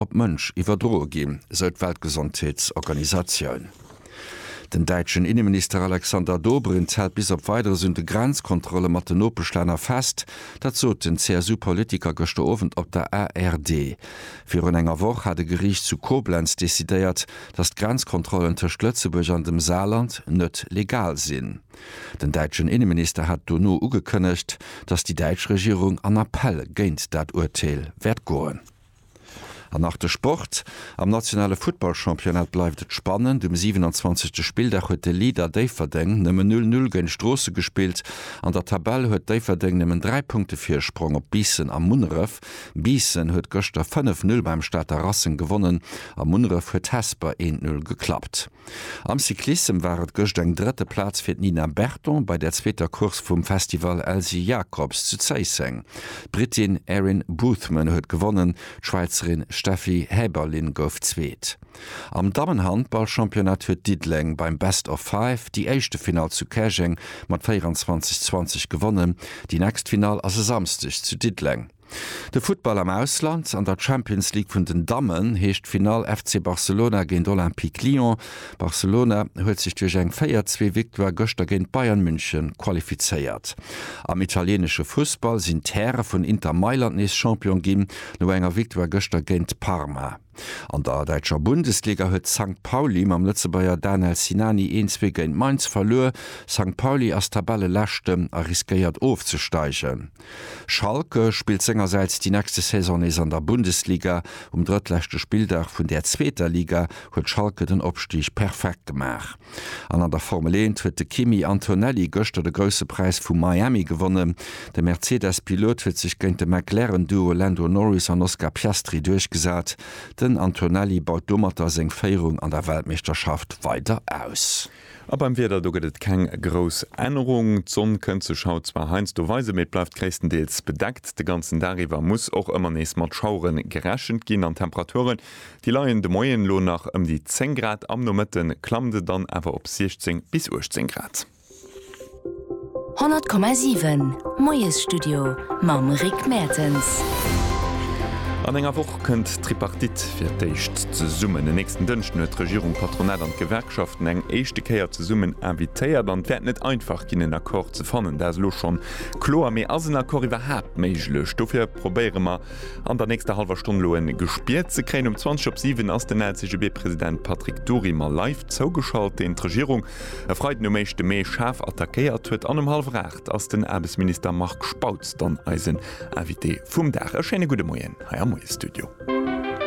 op Mënsch iwwerdroe ginn, esou d'Weltgesondheetsorganisatioun. Den däitschen Inneminister Alexander Dobrindt hält bis op Weideres un de Grenzkontrolle mat den Nopeschlänner fest. Dat sot den CSU-Politiker gëschter Owend op der ARD. Virun enger Woch hat e Geriicht zu Koblenz decidéiert, datt d'Grenzkontrollen tëscht Lëtzebuerg an dem Saarland net legal sinn. Den däitschen Inneminister hat dono ugekënnegt, datt déi däitsch Regierung an Appell géint dat Urteel wäert goen. An nach de Sport, Am nationale Futtballchampionnat bleift et spannend. Um 27. Spilldag huet de Leader Déifferdeng nëmmen 0 Null géint Stroossen gespillt. An der Tabell huet Déifferdeng nëmmen 3 Punkte Virsprong op Biissen a Munneref. Biissen huet gëschter 5 Null beim Stater Racing gewonnen a Munneref huet Hesper 1 Null geklappt. Am Cyclissem war et gëscht eng drëtte Plaz fir d'Nina Berton bei der zweeter Course vum Festival Elsy Jacobs zu Zéisseng. D'Brittin Erin Boothman huet gewonnen, d'Schwäizerin Steffi Häberlin gouf Zweet. Am Dammen-Handball-Championnat huet Diddeleng beim Best of Five déi éischte Finall zu Käerjeng mat 24, 20 gewonnen. Déi nächst Finall ass e Samsdeg zu Diddeleng. De Futtball am Ausland, An der Champions League vun den Dammen heescht d'Finall FC Barcelona géint Olympique Lyon. Barcelona huet sech duerch eng 4, 2 Victoire gëschter géint Bayern München qualifizéiert. Am italienesche Fussball sinn d'Häre vun Inter Mailand nees Champion ginn, no enger Victoire gëschter géint Parma. An der däitscher Bundesliga huet Sankt Pauli mam Lëtzebuerger Danel Sinani een zwee géint Mainz verluer. Sankt Pauli ass Tabelleleschten a riskéiert ofzesteigen. Schalke spillt sengersäits déi nächste Saison nees an der Bundesliga. Um drëttleschte Spilldag vun där zweeter Liga huet Schalke den Opstig perfekt gemaach. An an der Formel 1 huet de Kimi Antonelli gëschter de Grousse Präis vu Miami gewonnen. De Mercedes-Pilot huet sech géint de McLaren-Duo Lando Norris an Oscar Piastri duerchgesat. Den Antonelli baut domatter seng Féierung an der Weltmeeschterschaft weider aus. A beim Wieder, do gëtt et keng grouss Ännerung. D'Sonn kënnt sech haut zwar heiansdo weisen, mee et bleift gréisstendeels bedeckt. De ganzen Dag iwwer muss och ëmmer nees mat Schauere gerechent ginn an d'Temperature Déi leien de Moien elo nach ëm déi 10 Grad, am Nomëtte klammt et dann awer op 16 bis 18 Grad. 100,7 Moiesstudio mam Rick Mertens. An enger Woch kënnt d'Tripartite fir d'éischt zesummen. En nächsten Dënschden huet d'Regierung d'Patronat an d'Gewerkschaften eng éischte Kéier zesummen invitéiert. An et wäert net einfach ginn, en Accord ze fannen, dat ass elo schonn kloer. Mee ass en Accord iwwerhaapt méiglech? Dofir probéiere mer, An der nächster hallwer Stonn lo en Gespier ze kréien. Um 20 op 7 ass den LCGB-President Patrick Dury mer live zougeschalt, deen d'Regierung e Freiden um éischte Mee schaarf attackéiert huet. An um hallwer 8 ass den Aarbechtsminister Marc Spautz dann eisen Invité vum Dag. E schéine gudde Moien hei am Moie-Studio.